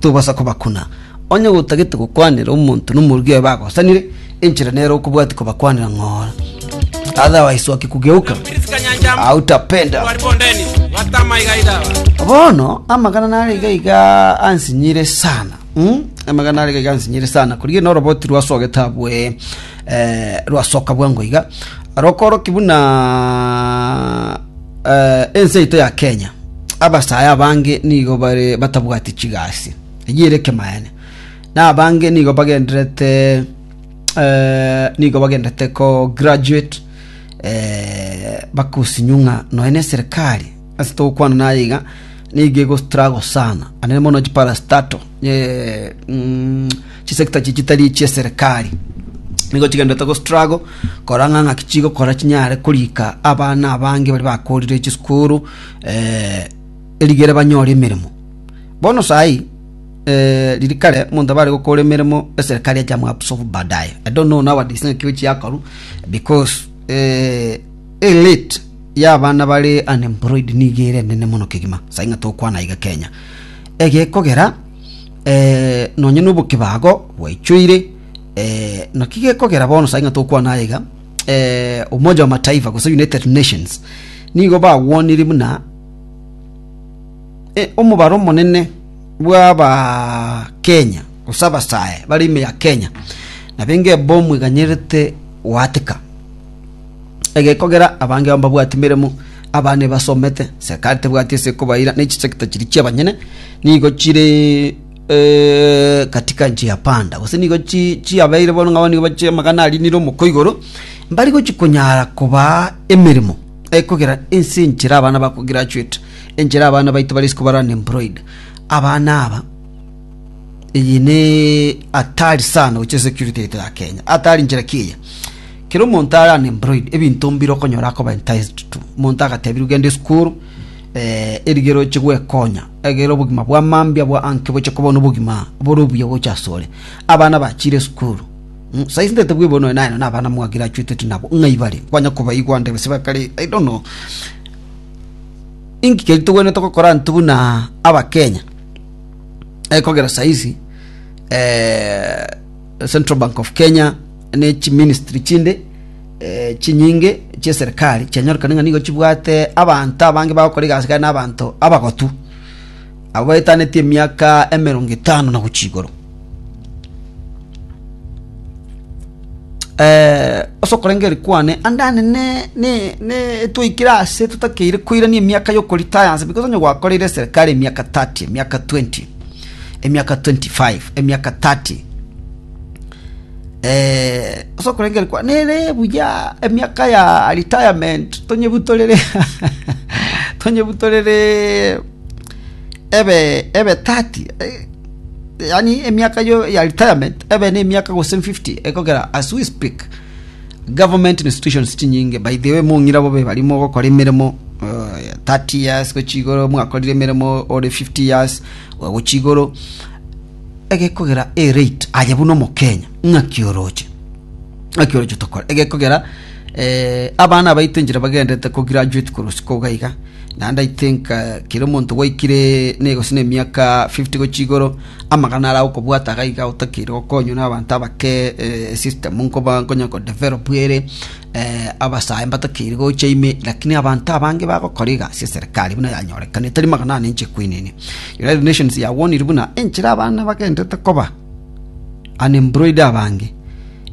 Tobasa kobakuna, onye gotagete gokwanera omonto nomorugi oye bagosanire, enchera nere okobwatia kobakwanera ng'ora. Otherwise oke kugeuka hautapenda. Bono amagana nare iga iga ansinyire sana mm? amagana nare iga iga ansinyire sana korigia na oroboti rwasogete abwe eh, rwasoka bwango iga rokoroki buna Ense yaito ya Kenya, abasae abange nigo bare batabwati chigasi eyio ere kemaene, na abange nigo bagenderete eh, nigo bagenderete ko graduate eh, bakusinywa ng'a nonya na eserikali ase togokwana naye iga nigo egostrago sana anene mono chiparastato eh, mm, Chisekta echi chitari chi'eserekari nigo chigenderete go struggle korang'a ng'aki chigokora chinyare korika abana abange bari bakorire chisukuru eh, erigere banyore emeremo bono sahi eh, riri kare monto abare gokora emeremo eserekari echamwabsofu baadaye i don't know nowadays ng'aki gochi yakoru because eh, elite y'abana bare unemployed nigo ere enene mono kegima sahi ng'a tokwana iga kenya egekogera Eh, nonya nobokebago bwaichoire. Eh, naki gekogera bono sai ng'a tokwana aye iga, eh, Umoja wa Mataifa gose United Nations nigo bagwanire buna eh, omobaro omonene bw'aba Kenya gose abasae bare ime ya Kenya nabenge ebomu eganyerete goateka egekogera abange ao mbabwati meremo, abana ebasomete, serikali tebwati ase ekobaira, ne chisekta chiria chiabanyene nigo chire eh, katika nchi ya panda gose nigo chi- chiabeire bono ng'abo nigo bache amagana arinire omoko igoro mbari gochi konyara kobaa emeremo ekogera ense enchera abana bako graduate enchera abana baito bare isiko bare unemployed abana aba eye ne atari sana gochia security yaito ya kenya atari nchera ki eye Kera omonto are unemployed, ebinto mbire okonyora akoba enticed to. Omonto agatebirwe genda esukuru, eh, erigiya roche gwekonya, egera obogima bwa mambia bwa anke boche koba nobogima bore obuya gocha asore. Abana bachire esukuru. Mm, saizi ndete bwebo noe naye na abana mwagire achweteti nabo, ng'ai bare? Kwanya kobaigwa ndebe se bakare, I don't know. Inki keri togwenerete gokora intwe buna Abakenya? Ekogera saizi, eh, Central Bank of Kenya, ne chiministry chinde eh, chinyinge chieserikali chianyorokana ng'a nigo chibwate abanto abange bagokora egasi gane n'abanto abagotu abo baetaneti emiaka emerongo etano na gochia igoro eh, ase okorengeri kwane andane ne, ne, ne twaikire ase totakeire koirania emiaka yokoritayansa because onye gwakoreire eserikali emiaka 30 emiaka 20 emiaka 25 emiaka 30 eh oso kurengera kwa nere buya emiaka ya retirement tonyebutorere tonyebutorere ebe ebe 30 eh, yani emiaka yo ya retirement ebe ne emiaka gose 50 ekogera as we speak government institutions chinyinge by the way mong'ira bobe barimo gokora emeremo uh, 30 years gochigoro mwakorire emeremo ore 50 years gwa gochia igoro egekogera a rate aye buna omokenya ng'aki oroche ng'aki oroche tokore egekogera eh, abana abaito enchera bagendete ko graduate korwa siko gaiga naende i think eh, kera omonto gwaikire negosi na emiaka 50 gochia igoro amagana ara okobwata gaiga otakeire gokonywa na abanto abake eh, system nkoba nkonya ko develop ere Abasae mbatakeire gocha ime, lakini abanto abange bagokora iga ase eserekari buna yanyorekana etari magana ane inche kwinini. United Nations yagwanirie buna enchera abana bagenderete koba unemployed abange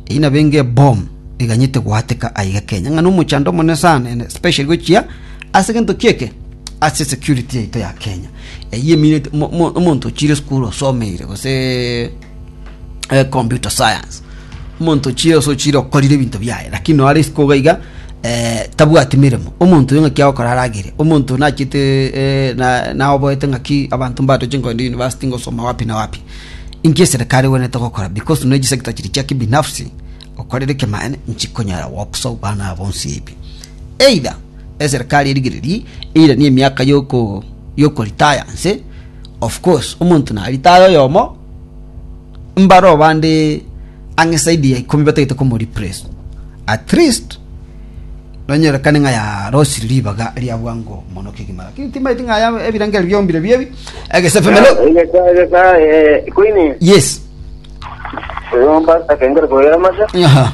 eyio nabo enge eboom eganyete goateka aiga Kenya ng'a nomochando omonene sana ene especially gochia ase egento ki eke ase security yaito ya Kenya. Eyio emineti mo mo omonto ochire esukuru osomeire gose eh, computer science omonto chire ase ochire okorire ebinto biaye lakini no are isiko iga iga eh, tabwati mirimo omonto oyo ng'aki agokora aragire omonto nachete eh, na- naoboete ng'aki abanto mbato chinkogende university ngosoma wapi na wapi inki eserikari egwenerete gokora because no echisector chiri chia kibinafsi okorere kemaene nchikonyara goksa obana abo bonsi ebi either eserikari erigererie eiranie emiaka yoko yokoritaya nse Of course omonto nari taya oyomo, mbareo bande ang'e saidi ya ikomi batagete komo replace. At least nonyorekane ng'a yarosire ribaga ria bwango mono kegima lakini timaeti ng'a aya ebirengererio biombire biebi egesefemelo. Egesa egesa eh, Queen Yes. Romba takengere koyera masa. Aha.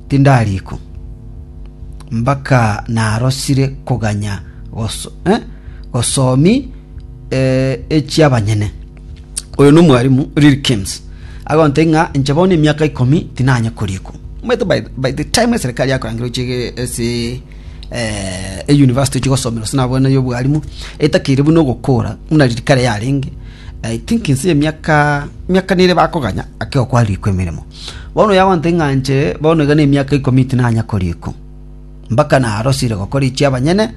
Tindariko mbaka narosire koganya gosomi echi'abanyene. Oyo nomwarimu Rilkins agontebia ng'a inche bono emiaka ikomi tinanye koriko. Omanyete by the time eserekari yakorangire gochia ase eyunivasiti ochia gosomera gose nabwo eyobwarimu etakeire buna ogokora buna riria kare yarenge, I think inse emiaka nere bakoganya ake gokwa riko emeremo. Bono yagonte ng'a inche bono iga nemiaka ikomi tinanya koria iko, mpaka narosire gokora echi'abanyene,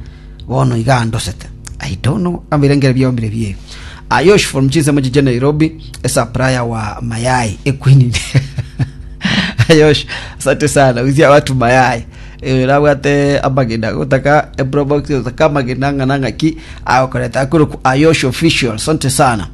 bono iga andosete. I don't know kaba ebirengeri biao mbire bie. Ayosh from chinsemo chichia Nairobi, a supplier wa mayai equeen. Ayosh, asante sana. Uzia watu mayai. Eh, nabwate amagena gotaka ebro box gotaka amagena ng'ana ng'aki agokoreta akuruku Ayosh official. Asante sana.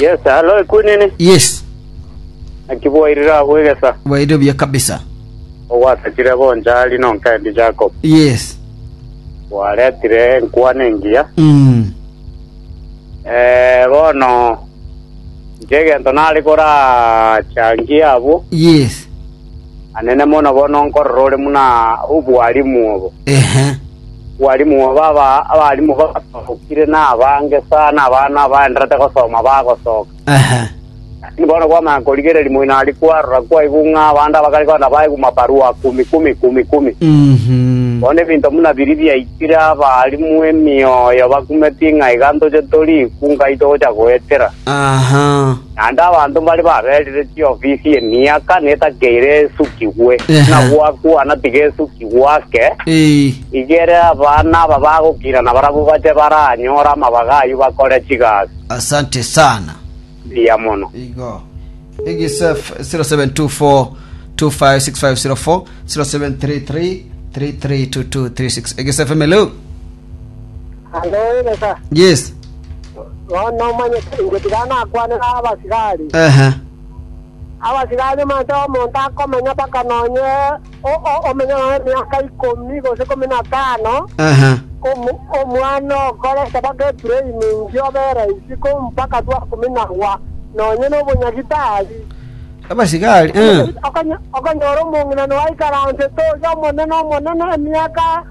Yes, alo ekwenene. Yes. Naki bwairire agwo egesa. Bwairire buya kabisa. Ogwasakire bonchari nonkendi Jacob. Yes. Bwaretire enkwana engiya. Mm. Eh, bono nche egento nare korachangie abwo. Yes. Anene mono bono nkorora ore muna obwarimu obo. Ehe. Bwalimu baba abalimu basookire nabange sana, abana abaenderete gosoma bagosoka. Lakini bono kwamanya korigereria moino aria kwarora kwaigwa ng'a abande abakare kogenda baigwa mabarua kumi kumi, kumi kumi. Bono ebinto buna biria biaikire abalimu emioyo bakumetie ng'a iga ntoche toriku Ngai togocha goetera. Naende abanto mbare baberire chiofisi emiaka netakeire esukigwe, Ehe. na gwakwana tigesukigwe ake, Ee. igere abana aba bagokina na barabwo bache baranyore amabaga ayio bakore chigasi. Asante sana. Mbuya mono. Igo. Egisef 0724256504 0733332236 Egisef Emelo. Aye oegesa, yes bono nomanyete inche tiga nakwane nabasigari. ehe Abasigari manse omonto akomenya mpaka nonye o- o- omenye nonye emiaka ikomi gose ikomi na tano, ehe omu- omwana okorete mpaka etraining obe raisi ko mpaka twakuminagwa nonye nobonyagitari. abasigari eh. Okonye- okonyora omong'ina noaikaransete oria omonene omonene emiaka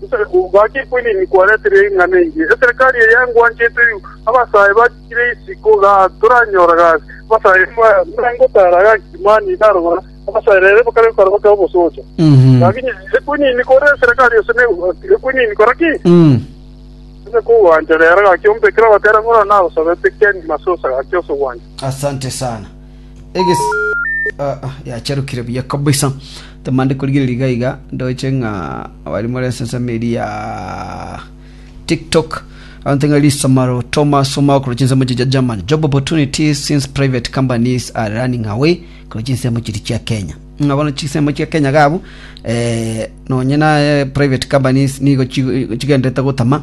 Gose gwacha ekwinini kwareteire ing'ana engiya, eserekari eye ngwanchete, abasae bachire isiko, gaki toranyora gasi, abasae mbengotara gaki, mani narogora abasae rere bakare gokora bake obosocha. Gaki inye ekwinini kore eserekari ase ne- ekwinini kora ki? Onye kogwancha rero gaki ombekere ogotera ng'ora nagosabete keni masusa gaki ase ogwancha. Asante sana. Egesi ah, ah, yacharukire buya kabisa tamande korigereria iga iga ndoche ng'a abari more enseseme eri ya tiktok abanto ng'a lisamaro thomas omao korochi ensemo chiria chia german job opportunities since private companies are running away korochi ensemo chiri chia kenya ng'a bono chisemo chia kenya gabu eh, nonye na eh, private companies nigo chi- chigenderete gotama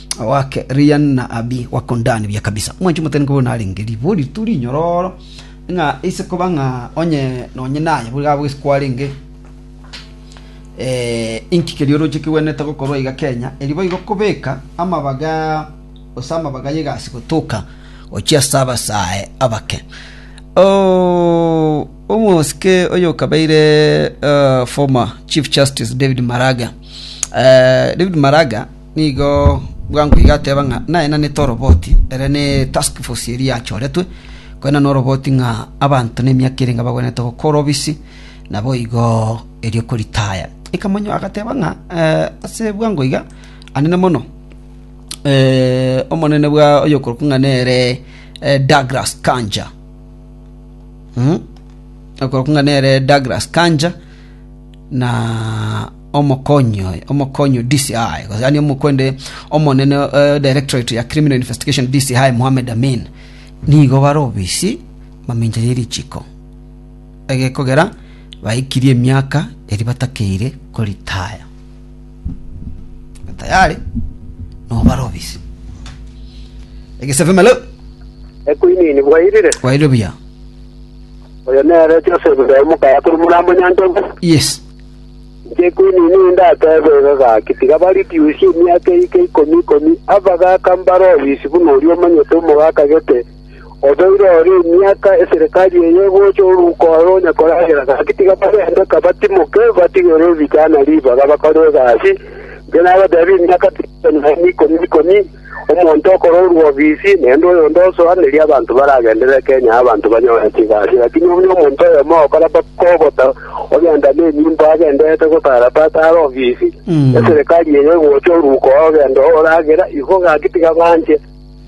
Awake Rian na Abi wakondani buya kabisa. Mwanchi motari nkobo narenge ribo ritu rinyororo ng'a ise koba ng'a onye nonye naye buri gabo gese kwarenge eh, inki keria oroche kigwenerete gokorwa iga Kenya eri boigo kobeka amabaga ose amabaga y'egasi gotoka ochia ase abasae abake Oh, omosike oyo okabeire uh, former chief justice david maraga uh, david maraga Nigo bwango iga ateba ng'a naenanete oroboti ere ne Task Force eria yachoretwe koenana oroboti ng'a abanto nemiaka ere ngabagwenerete gokora obisi, naboigo erio koritaya. Ikamonyoa agateba ng'a ase bwango iga anene mono omonene bwa oyokorokwa ng'a nere Douglas Kanja oyokorokwa ng'a nere Douglas Kanja. na omokonyi oye, omokonyi o DCI, gose yaani omokwende omonene eh, directorate ya criminal investigation DCI Mohamed Amin, nigo bare obisi mamincha ye richiko egekogera baikirie emiaka eri batakeire koritaya tayari nobare obisi egesevimelo Ekuini nibwairire. kwaire buya Oyo nere Joseph ere omokaya korwa Morambo Nyanchogu. Yes. Inche Queen nigo ndatebe iga gaki, tiga bareduce emiaka eyike ikomi ikomi, abagaka mbare obisi buna oria omanyete omogaka gete, obeire ore emiaka eserekari eye egocha oruko oro onya koragera gaki tiga barendeka batimoke batigere ebichana ribaga bakore egasi. Inche nabatebia emiaka tiga ikomi ikomi Omonto okororwa obisi nende oyonde osoa, nerio abanto baragenderere Kenya abanto banyore chigasi. Lakini onye omonto oyomo ogokora baka obosa, ogenda nenyimbo agendererete gotara pata are obisi, eserekari eria egocha oruko ogenda oragera, Igo gaki tiga banche.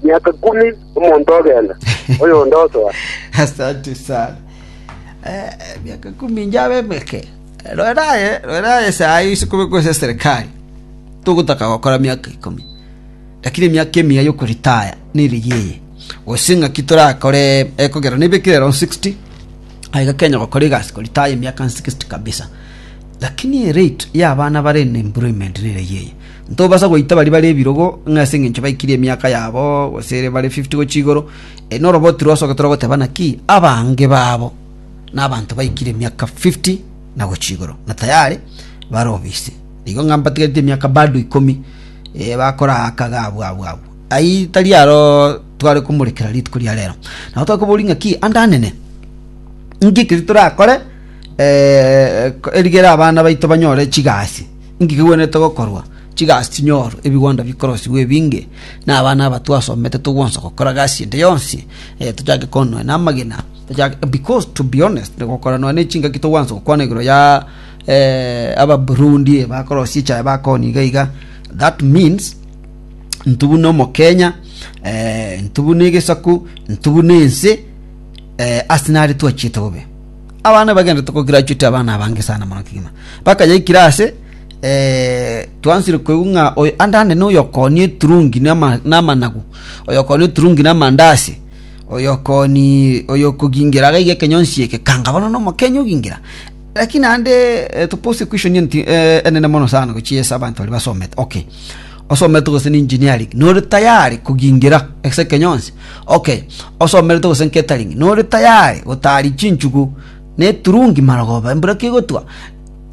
Miaka kumi omonto ogenda, oyonde osoa. Asante sana. Eh, miaka kumi njabe meke. Rorera aye, rorera aye ase aya ise kobekwa ase eserekari, togotaka gokora miaka ikomi, lakini emiaka emiya y'okoritaya nerigiya eye. Gose ng'aki torakore ekogera nebekire round 60, aye gakenya gokora egasi koritaya emiaka 60 kabisa. Lakini erate y'abana bare in employment nerigiya eye. Ntobasa goita baria bare ebirogo ng'a ase eng'encho baikirie emiaka yabo gose ere bare 50 gochia igoro, eh, noroba otirosoka toragoteba naki abange babo nabanto baikire emiaka fifty na gochia igoro, na tayari bare obise. Nigo ng'a mbatigerete emiaka bado ikomi bakoraaka iga abwo abwo abwo. Ayio tari aro tware komorekera rituko ria rero. Nabo twakoboria ng'a ki ande anene, inki ekeri torakore erigere abana baito banyore chigasi? Inki kegwenerete gokorwa chigasi chinyorwe, ebigwanda bikorosigwe ebinge, na abana aba twasomete togwansa gokora gasi ende yonsi tochake konoe na amagena? Because to be honest, gokora nonya ne chingaki togwansa gokwana igoro ya eh, aba Burundi eh, bakorosia echaye bakoni iga iga. That means ntu buna omokenya eh, ntu buna egesaku ntu buna ense eh, ase nare twachiete bobe abana bagenda tokograduate abana abange sana mono kigima bakayaikira ase eh, twansire koigwa ng'a oyo andande na oyokonia eturungi nama- namanagu oyokonia eturungi namandasi “Oyokogingira agaiga ekenyonsi eke, kanga bono nomokenya ogingira. Lakini naende topose question eye enene mono sana gochia ase abanto baria basomete. Okay, osomete gose na engineering, nore tayari kogingira ase ekenyonsi? Okay, osomerete gose catering, nore tayari gotari chinchugu na eturungi marogoba embura kegotwa?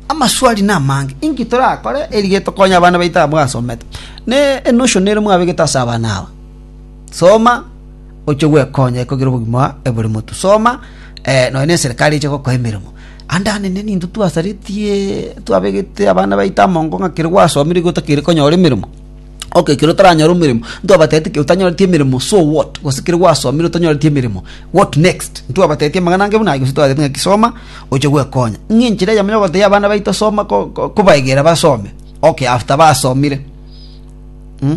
Amaswali na amange. Inki torakore erige tokonye abana baito aba mwasomete? Ne enotion ere mwabegete ase abana aba? Soma, ochie gwekonya ekogira obogima ebore motu. Soma, nonya ne serikali eche gokoa emeremo. Ande anene ninto twasaretie, twabegete abana baito amongo ng'a ekero gwasomire igo otakeire konyora emeremo. Okay ekero otaranyora emeremo, ntwabatebitie ekero otanyoreti emeremo so what? Gose ekero gwasomire otanyoreti emeremo what next? Ntwabatebitie amang'ana ange buna ayio gose twababwate ng'aki soma, ochie gwekonya. Ng'a enchera eyemo ya gotebia abana baito soma ko kobaegera basome. Okay after basomire, mh.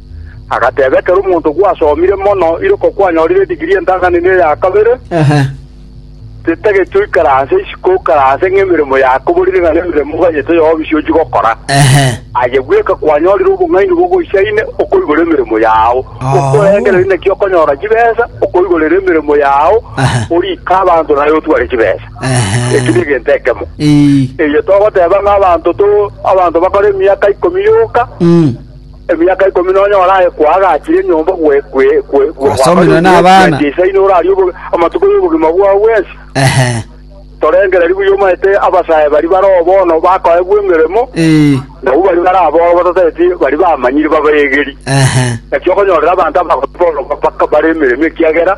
Agateba, Ekero omonto gwasomire mono iroko kwanyorire digiri entantanini eya kabere, titageti oikaranse isiko okaranse ng'a emeremo yako borire ng'a nemeremo obanyete yobisi ochia gokora. Aye bweka kwanyorire obong'aini bogoisaine okoigora emeremo yao, okorengereria naki okonyora chibesa, okoigorera emeremo yao, orike abanto naye otware chibesa. Eki negento ekemo. Eye togoteba ng'a abanto to abanto bakore emiaka ikomi yoka, Emiaka ikomi nonya oraekwa agachire enyomba gwesomerwa nabana isaino orarie amatuko yobogima bwao bwensi torengereri buya omanyete abasae baria baroo bono bakoegwa emeremo nabu baria bare aboro batotageti baria bamanyire babaegeri naki okonyorera abanto abagore bono bare emeremo ekiagera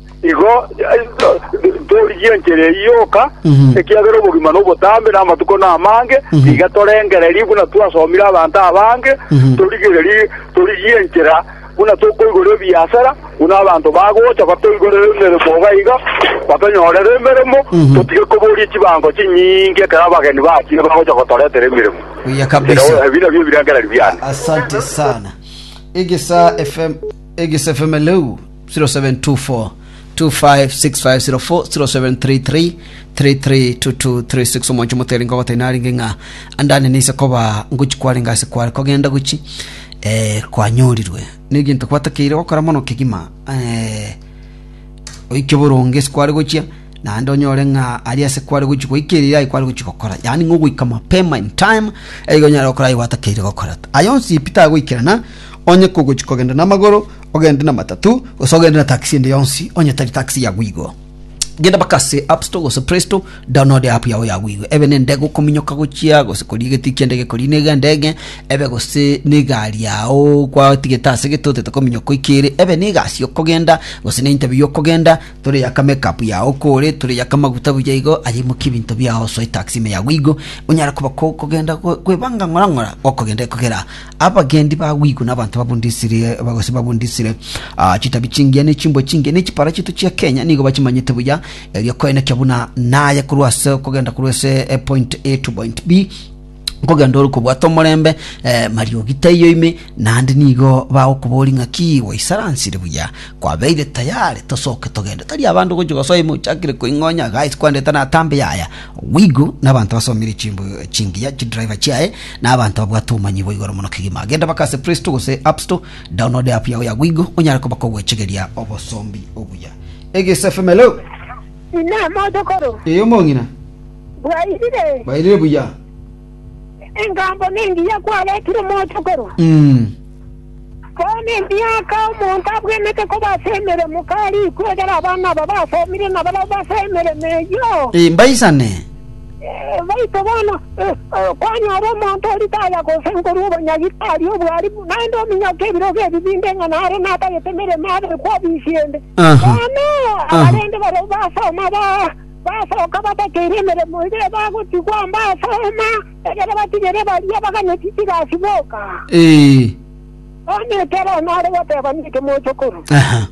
Igo torigie enchera eyio yoka, ekiagera obogima nobotambe, na amatuko namange, tiga torengererie buna twasomire abanto abange, torigererie torigie enchera buna tokoigora ebiasara, buna abanto bagocha batoigorere emeremo iga iga, batonyorere emeremo, totige koboria chibango chinyinge ekero abageni bachire bagocha gotoretera emeremo. Buya kabisa. Ekero- Ebi nabio ebirengererio biane. Asante sana. Egesa FM, Egesa FM leo 07242565040733332236 omonche motere nkogote narenge ng'a andane nise koba ngochi kwarenge ase kware kogenda gochi eh, kwanyorirwe negento kwatakeire gokora mono kegima eh, oike boronge ase kware gochia naende onyore ng'a ari ase kware gochi goika eria aye kware gochi gokora yaani ng'a ogoika mapema in time eiga onyare gokora aye gwatakeire gokora aye onsi peter agoikerana onye kogochi kogenda na amagoro Ogende na matatu gose ogende na taxi ende yonsi onye tari taxi ya Gwigo. Genda mpaka ase App Store gose Play Store, download app yao ya Gwigo. Ebe nende gokominyoka gochia gose koria egetui ki'endege ekoria niga endege ebe gose na egari yao kwatigete ase gete otete kominyoka oikere ebe na egasi okogenda gose na interview okogenda tore yaka make up yao kore tore yaka maguta buya igo aye imokie ebinto biao osoe taxi ime ya Gwigo onyare koba ko- kogenda ko- kwebanga ng'ora ng'ora gokogenda ekogera Abagendi bagwigwe nabanto babundisire gose babundisire ah, chitabi chingiya ne chimbwe chingiya ne chiparachitu chia Kenya nigo bachimanyete buya erio koenekia buna naye korwa ase kogenda korwa ase eh, point A to point B nkogenda ore kobwata omorembe eh, mariogi taiyo ime naende nigo bagokobori ng'aki gwaisaransire buya kwabeire tayari tosoke togende tari abande gochi gosoa ime ochakire koing'onya guys kwandete natambe yaya wigu nabanto basomire chimbo chingiya chidriver chiaye na abanto babwate obomanyi bwa igoro mono kegima. Genda baka ase Play Store gose App Store, download app yao ya Gwigo onyare kobaka ogwechegeria obosombi obuya. Egesa FM hello. Ina motokoro Ee omong'ina. bwairire Bairire buya. engambo nengiya kwaretire motokoro Mm. Bono emiaka omonto abwenerete koba ase emeremo karikwe, ekero abana aba basoomire na barabwo base emeremo eyio. Mbaisane. Baito bono, kwanyora omonto o ritaya gose nkorwa obonyagi tari obwarimu, naende ominyoke ebirogo ebi binde ng'a nare natagete emeremo abekwe obisi ende. Bono abarende barabwo basoma basoka batakeire emeremo iga ebagotigwa mbasooma. Ekero batigire baria baganeti tigasiboka, Ee. bono ekero nare goteba niki mochokoro? Aha.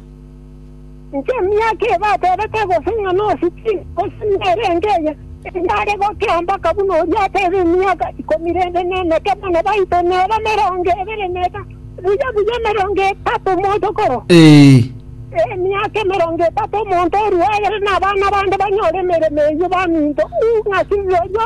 Inche emiaka eye batebete gose ng'a nosiki, gose nere engeye, enyare gokira mpaka buna oria atebe emiaka ikomi rende nemeke buna baito nere emerongo ebere netato, buya buya emerongo etato mochokoro. Ee. Emiaka emerongo etato omonto orue egere na abana bande banyore emeremo eyio baminto, u ng'aki borio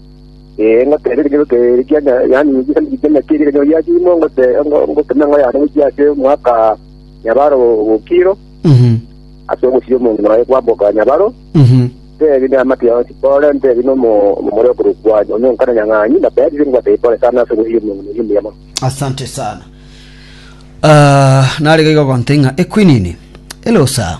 Ee, ngoteebie ekenyoro keria kia nya- yaani ekisaku eria kiana kieria ekenyoro gia chiimo, ngote- ngo- ngoteme eng'o yane gochia ase omwaka nyabaro gokiro, Mhm. ase ogosibia omonto nonya kwamboka nyabaro, Mhm. ntebi namate yonsi pore, ntebi nomo omomori okorokwa onye onkana nyang'anyi, natebirie ngwatebie pore sana ase ogosibia omonto nonya omuya mono. asante sana Ah, narigaiga gonte ng'a ekwinini elosa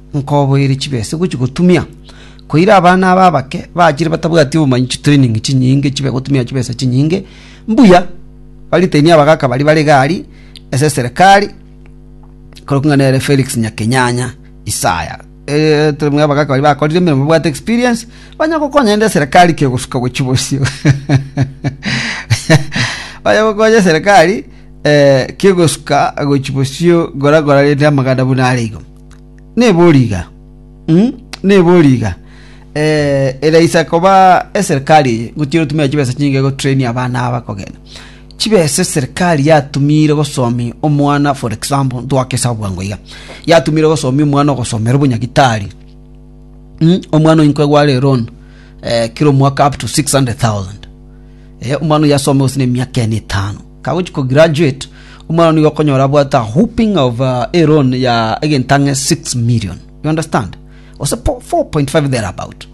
nkoboeire chibese gochia gotumia, koira abana aba abake bachire batabwati obomanyi chitrening chinyinge chibe gotumia chibesa chinyinge, mbuya baritenie abagaka baria bare gari ase eserekari, korokwa ng'a nere Felix Nyakenyanya Isaya. Eh, tari muna abagaka baria bakorire emeremo babwate experience, banya gokonya naende eserekari kegosuka gochia bosio. Banya gokonya eserekari eh, kegosuka gochia bosio gora gora rende amagana buna are igo. Nebori iga, mm, nebori iga. Eh, ere isa koba eserikali eye, ngotiga otumia chibesa chinyinge gotrain abana aba kogenda. Chibesa eserikali yatumire gosomi omwana for example, ntwake esabu bwango iga. Yatumire gosomi omwana ogosomera obunyagitari. Mm, omwana oinko egware loan eh, kira omwaka up to 600,000. Eh, omwana oyo asome gose na emiaka ene etano. Kagochia ko graduate, omwana nigo okonyora abwate a whooping of a loan ya egento ang'e 6 million. You understand? Gose 4.5 there about.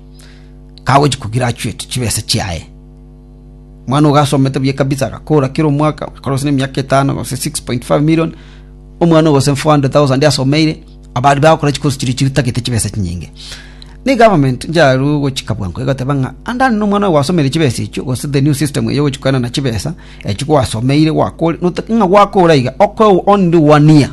Kagochia ko graduate chibesa chiaye. Mwana ogo asomete buya kabisa agakora kila omwaka, akora gose emiaka etano gose 6.5 million. Omwana ogo gose 400,000 asomeire, abari bagokora chikosi chiria chitagete chibesa chinyinge. Ne government njaru gochika bwango egoteba ng'a andani nomwana oyo gwasomeire chibesa echio gose the new system eyo gochia koenana chibesa Eki gwasomeire gwakore, notake ng'a gwakora iga, okoe onde wania,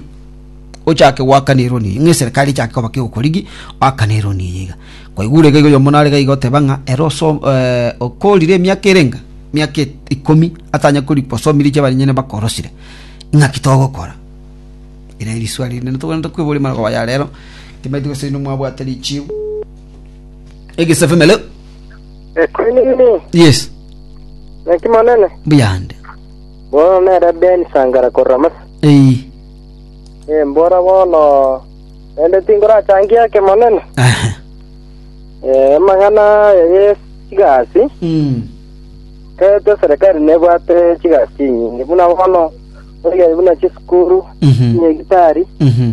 ochake gwakana eroni eye, ng'a eserikari echake koba kegokorigi, wakana eroni eye iga. Kwaigure iga iga oyomo nare iga iga oteba ng'a ere oso eh, okorire emiaka ere enga? Emiaka e- ikomi atanya kori gosomiri echi abanyene bakorosire. Ng'aki togokora? Ere riswali rinde natoganete kweboria amangoko aya rero, timanyete gose inwe mwabwate richibu. Egesabi meleo. Ekwene nini? Yes. Naki monene? Buyande. Bono nere Ben Sangara korwa Masa. Ei. Eh, mbora bono. Ende tingorachangie ake monene. Aha. Eh, amang'ana ya Yesu chigasi. Mm. Kete serikali nebwate chigasi chinyingi. Buna bono, oyari buna chisukuru, Mhm. nyegitari, Mhm.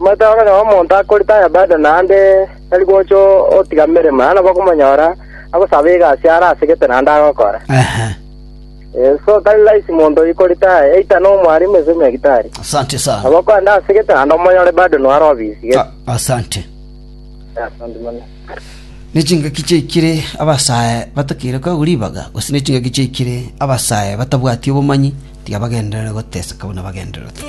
Omanyete ore nao omonto akorete aya baada naende tari gocha otiga emeremo, na nabo okomonyora agosaba egasi are ase gete naende agokora. So tari rahisi monto oikorete aya, either nomwarimu gose nyagetari. Nabo okogenda ase gete naende omonyore bado noare obisi gete. Nechingaki chiaikire abasae batakeire koegwa ribaga, gose nechingaki chiaikire abasae batabwati obomanyi, tiga bagenderere goteseka buna bagendererete.